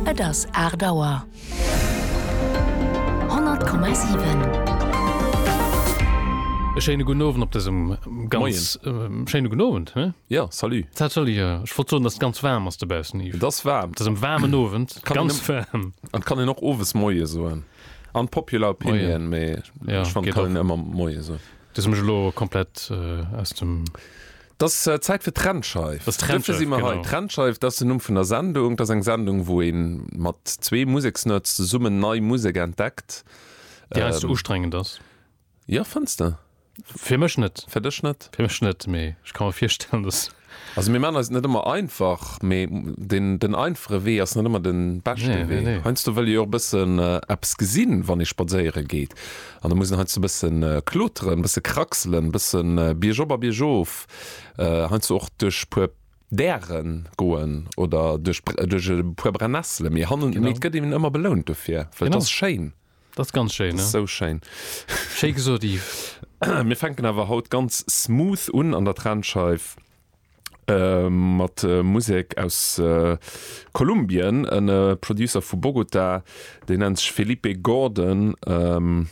Et ass 8 Auer. 100,7. E schéine gudden Owend op dësem ganz. Moien. E schéine gudden Owend, hé? Ja, salut. Dat soll ech, ech wollt soen, dass et ganz waarm ass dobaussen, Yves. Et ass waarm. Et ass en waarmen Owend, Kann een ganz em- waarm. An et kann een och owes Moie soen. Unpopular opinion, mee Ja, ech fannen, et geht kann och. een ëmmer Moie soen. Du hues mech elo komplett äh, aus dem. Dass Zäit fir d'Rennscheif. Dass d'Rennscheif, Dofir si mer hei. Genau. D'Rennscheif, dass den Numm vun der Sendung. Dass eng Sendung, wou ee mat zwee Museksnerds zesummen nei Musek entdeckt. Déi heiansdo ustrengend ass. Jo, fënns de? Fir mech net. Fir dech net? Fir mech net, mee ech ka mer virstellen, dass. Also mir maachen eis et net ëmmer einfach, mee den, den einfache Wee ass net ëmmer den beschten Nee, nee, Wee. nee. Heiansdo wëll ee jo och e bëssen eppes gesinn, wann ee spadséieren geet. An da muss en heiansdo e bësse kloteren, e bësse kraxelen, e bësse biergop a biergof, heiansdo och duerch e puer Däre goen oder duerch e puer Brennessele. Mee hannen, mee et gëtt een ëmmer belount dofir, well et ass schéin. Et ass ganz schéin, ja. Sou schéin. Schéi gesot, Yves. Mir fänken awer haut ganz smooth un an der Trennscheif. Äh, mat äh, Musek aus äh, Kolumbien. En äh, Producer vu Bogota, deen nennt sech Felipe Gordon. Ähm,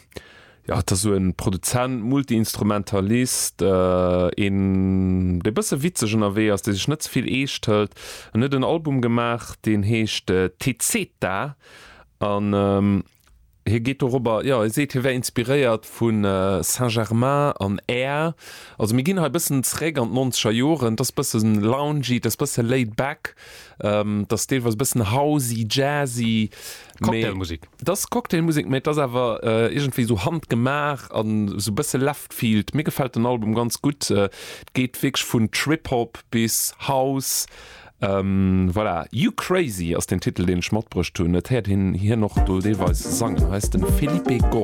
ja, et ass sou en Produzent, Multiinstrumentalist, äh, een, dee bësse witzeg ënnerwee ass, dee sech net ze vill eescht hëlt. En huet en Album gemaach, deen heescht äh, Te Zeta an ähm, Hie geet dorobber, jo, hie seet, hie wär inspiréiert vu Saint-Germain an Air. Also mir ginn hei bëssen zeréck an d'nonzeger Joren. Et ass bësse loungy, et ass bësse laid back, et ass deelweis bëssen housey, jazzy. Cocktailmusek. Et ass Cocktailmusek, mä et ass awer iergendwéi esou handgemaach an esou bësse leftfield. Mir gefält den Album ganz gutt. Et geet wierklech vun Trip-Hop bis House. Voilà, You Crazy ass den Titel deen ech matbruecht hunn. Et héiert een hien och do deelweis sangen. Hei ass de Felipe Gó.